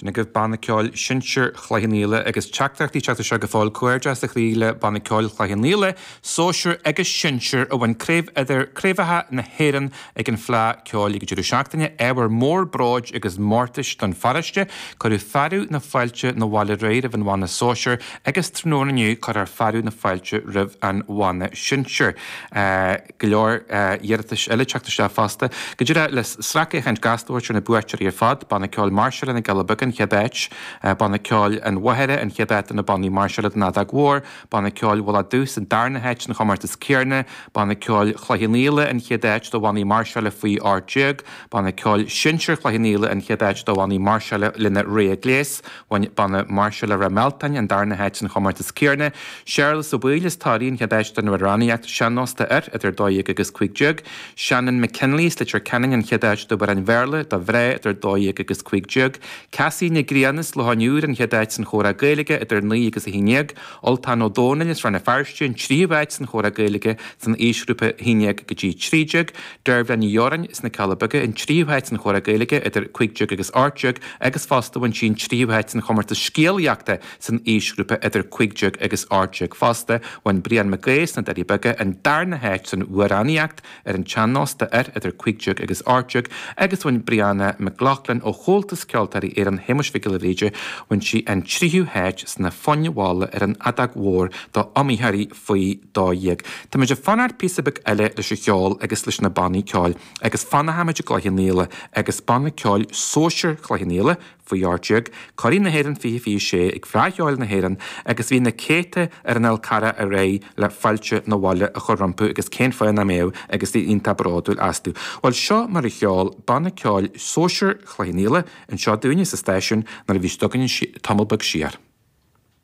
Sin agaibh Banna Ceoil Sinsir Chloich Cheann Fhaola agus teachtaireachtaí ag teacht isteach go fóill. Comhghairdeas ó chroí le Banna Ceoil Chloich Cheann Fhaola, Sóisir agus Sinsir, a bhain craobhacha na hÉireann ag an Fhleadh Ceoil ag an deireadh seachtaine. Ábhar mór bróid agus mórtais don pharóiste, cuireadh fearadh na fáilte 'na bhaile aréir roimh an bhanna sóisir agus tráthnóna inniu cuirfear fearadh na fáilte roimh an bhanna sinsir. go leor iarratais eile teacht isteach fosta. Go díreach le sracfhéachaint gasta a thabhairt ar na buaiteoirí ar fad, Banna Ceoil Máirseála na gCealla Beaga an chéad áit, Banna Ceoil an Mhachaire an chéad áit do na bannaí máirseála don fheadóg mhór, Banna Ceoil Mhullach Dubh san darna háit san chomórtas céarna, Banna Ceoil Chloich Cheann Fhaola an chéad áit do bhannaí máirseála faoi 18, Banna Ceoil Sinsir Chloich Cheann Fhaola an chéad áit do bhannaí máirseála lena rogha gléas, Banna Máirseála Ráth Mealtain an darna háit san chomórtas céarna, Séarlas Ó Baoill as Toraigh an chéad áit don amhránaíocht sean-nós do fhir idir 12 agus 15, Shannon McKinley as Leitir Ceanainn an chéad áit d'amhráin Bhéarla do mhná idir 12 agus 15, Cassie Nic Grianna as Loch an Iúir an chéad áit san chomhrá Gaeilge idir 9 agus 11, Ultán Ó Dónaill as Rann na Feirste an tríú áit san chomhrá Gaeilge san aoisghrúpa 11 go dtí 13, Deirbhile Ní Dheoráin as na Cealla Beaga an tríú háit san Chomhrá Gaeilge idir Cúig Déag agus Ocht Déag agus fosta bhain sí an tríú háit san chomórtas scéalaíochta san aoisghrúpa idir Cúig Déag agus Ocht Déag fosta. Bhain Brian Mac Aoidh as na Doirí Beaga an darna háit san amhránaíocht ar an tsean-nós do fhir idir Cúig Déag agus Ocht Déag agus bhain Brianna McLaughlin ó Chomhaltas Ceoltóirí Éireann Shéamuis Mhic Giolla Bhríde bhain sí an tríú háit sna foinn mhalla ar an fheadóg mhór do iomaitheoirí faoi 12. Táimid ag fanacht píosa beag eile leis an cheol agus leis na bannaí ceoil agus fanfaimid i gCloich Cheann Fhaola agus banna ceoil sóisir Chloich Cheann Fhaola, faoi 18, curaidh na hÉireann 2026 ag Fleadh Cheoil na hÉireann agus bhí na céadta ar an Fhál Carrach aréir le fáilte 'na bhaile a chur rompu agus cén fáth nach mbeadh agus iad iontach bródúil astu. Bhuel seo mar a cheol banna ceoil sóisir Chloich Cheann Fhaola anseo dúinne sa stáisiún nuair a bhí siad againn tamall beag siar.